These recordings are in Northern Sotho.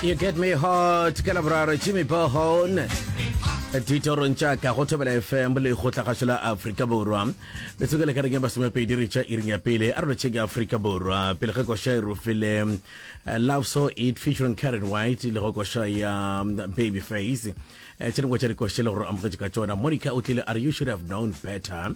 You get me hot ka laboraro Jimmy Bohon ditorong tša ka go thobela fm le go tlagašo la aforika borwa metsoko le ka reng ya masomepedi re tša iring ya pele a re tšheke aforika borwa pele ge koša e rofile eh, love so it featuring karen white le go koša ya um, baby face eh, tše dingwe tša dikoša le gore amogetše ka tšona monica o tlile are you should have known better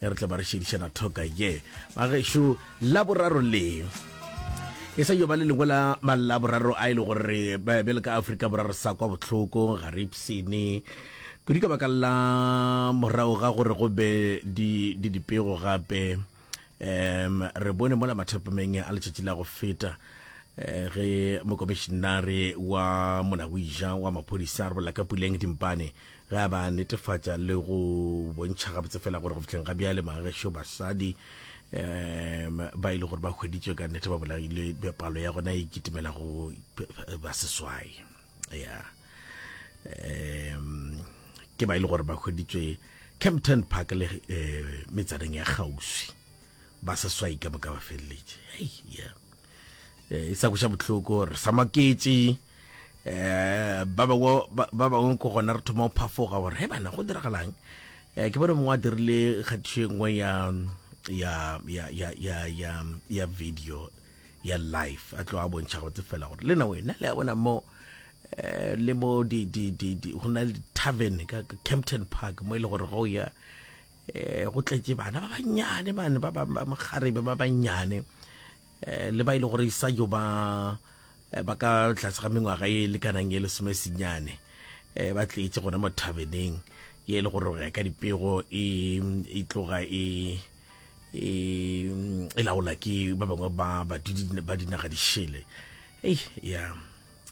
e re tle ba re šedišana thoka ye ba gešo laboraro le e sa yo ba le lengwe la malaboraro a e le gore bjale ka aforika borwa re sa kwa botlhoko ga re ipsene kudu ka baka la morago ga gore go be di dipego gape um re bone mola mathapameng a letšatši la go feta Eh, ge mokomišinare wa molagoija wa maphodisa re bolela ka puleng dimpane Ge a ba netefatša le go bontšha gabotse fela gore go fihleng ga bjale bagešo basadi um ba e le gore ba hweditswe ka nnete ba bolaile palo ya gona e kitimela go ba seswai ya um ke ba e le gore ba hweditswe campton park le um metsaneng ya kgauswi ba seswai ka moka ba feleletše hei ya eh, e sa kweša bohloko re sa maketše um ba bangwe ko gona re thoma go phafoga gore he bana go diragalang um ke bone mongwe a dirile kgathišo e nngwe ya ya ya ya ya ya ya video ya life a tlo a bontšha gotse fela gore le na wena le a bona mo eh, le mo di di di di go na le tavern ka Kempton Park mo e le gore go ya um go tletše bana ba bannyane bane ba mokgarebe ba bannyane um le ba e le gore sa jo ba eh, ba ka tlase ga mengwaga e lekanang e lesome senyane um ba tletše gona mo thabeneng ye e le gore ya ka dipego e, e tloga e e, e laola ke ba bangwe ba badudi ba dinaga dišele ei ya yeah.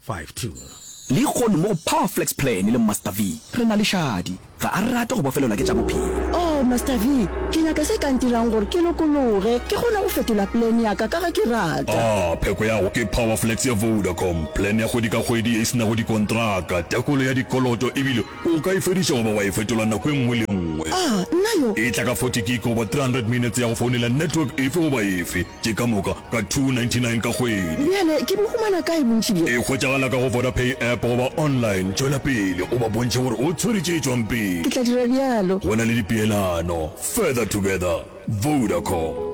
5 to. Lehono mo go Powerflex Plan le Master V, re na le šadi. Ga a rate go bofelelwa ke tša bophelo. Oh, Master V, ke nyaka se ka ntirang gore ke lokologe, ke kgone go fetola plan ya ka ka ge ke rata. Ah, pheko ya go ke Powerflex ya Vodacom, plan ya kgwedi ka kgwedi ye e se nago dikontraka, tekolo ya dikoloto ebile o ka e fediša goba wa e fetola nako e nngwe le nngwe. Ah, nna yo! E tla ka 40 gig goba 300 minutes ya go founela network efe goba efe. Ke ka moka ka 299 ka kgwedi. Bjale ke bo humana kae bontši bjo? E hwetšagala ka go Vodapay app goba online. Tšwela pele o ba bontšhe gore o tshwere tše tšwang pele. Ke tla dira bjalo. Go na le dipeelano. Further together. Vodacom.